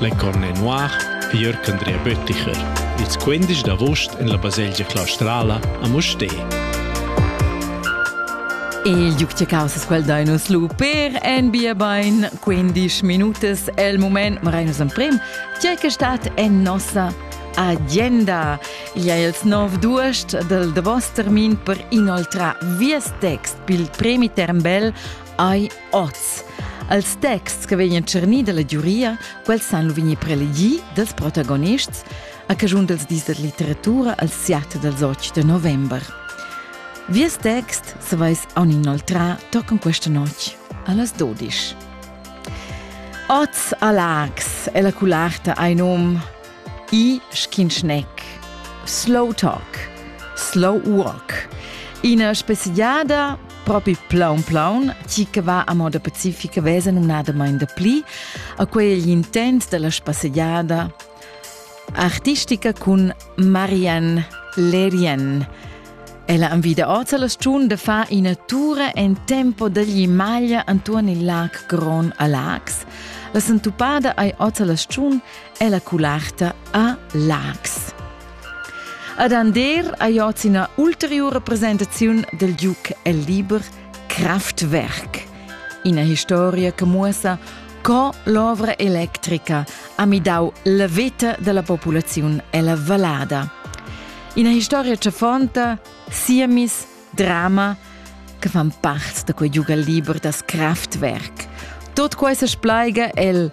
La Corne Noir e Jörg Andrea Bötticher, ils 15 d'avust en la baselgia claustrala a Mustér. Il duc de Causas quel dai nus lu per en bia bein 15 minutas el moment marenus emprim tgei che stat en nossa agenda. Ia els nov duest del davos termin per inoltrar vies text pil premi Termbel ai Oz. Als texts che vegnan tschernì dalla giuria, quels san lu vegnir prelegì dals protagonists a caschun dals dis da litteratura al siat dals 8 da november. Vies text, se vais aun inoltrà, toccam questa notg allas 12. Oz a Lax è la cularta ein um i schinschneck, slow talk, slow walk. Ina speziada propi plaun plaun, chi che va a moda pacifica vesa numnadamain da pli a quei l'intent della spasseggiada artistica cun Marianne Lerien. Ella invita oz alla stagiun da far ina tura en tempo dagli maglia antuon il lac Gron a Lax. La sentupada ei oz alla stagiun Ella cularta a Laax. Ad Ander ha joz ina ulteriura presentaziun del Duc el liber Kraftwerk, ina historia che muossa co l'ovra electrica ha midau la veta della populaziun ella vallada. Ina historia chafonta, siemis, drama, che fan part da quei giugal liber das Kraftwerk. Tot quei se splaiga el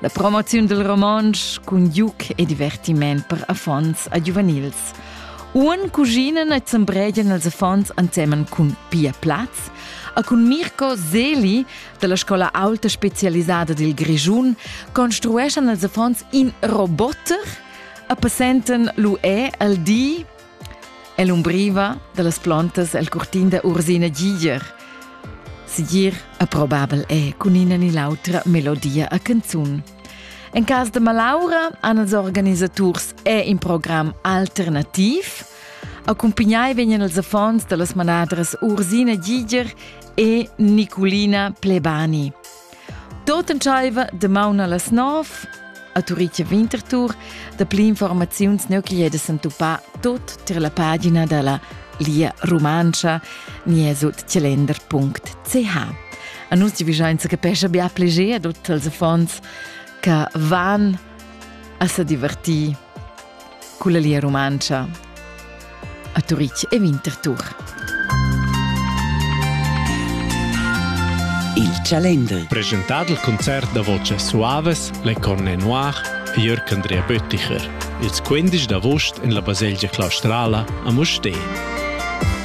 La promoziun dal romontsch cun juc e divertiment per affons a giuvenils. Uon cuginan e zembregian els affons ansemen cun Pia Platz a cun Mirko Seli dalla scola aulta specialisada dil Grischun construeschan els affons in roboter a passentan lu è al di Ell'umbriva dallas plontas el curtin da Ursina Giger. Segir approbabel è cun ina ni l'autra melodia a canzun. En cas de Malaura han els organisaturs è in program alternativ. Accompagnai vegnan els affons dallas manadras Ursina Giger e Nicolina Plebani. Tot entscheiva damaun allas nov a Turitg Winterthur. Dapli informaziuns ne chiedes entupà tot tir la pagina dalla Lia Rumantscha nie sut celender.ch. A nus ti vigiainza capescha bia pleger a tutti els affons che van a se divertir culla Lia Rumantscha a Turitg e Winterthur. Il Chalender. Presentad il concert da voce suaves Le Cornet Noir e Jörg Andrea Bötticher. Ils 15 d'agost en la baselgia claustrala a Mustér.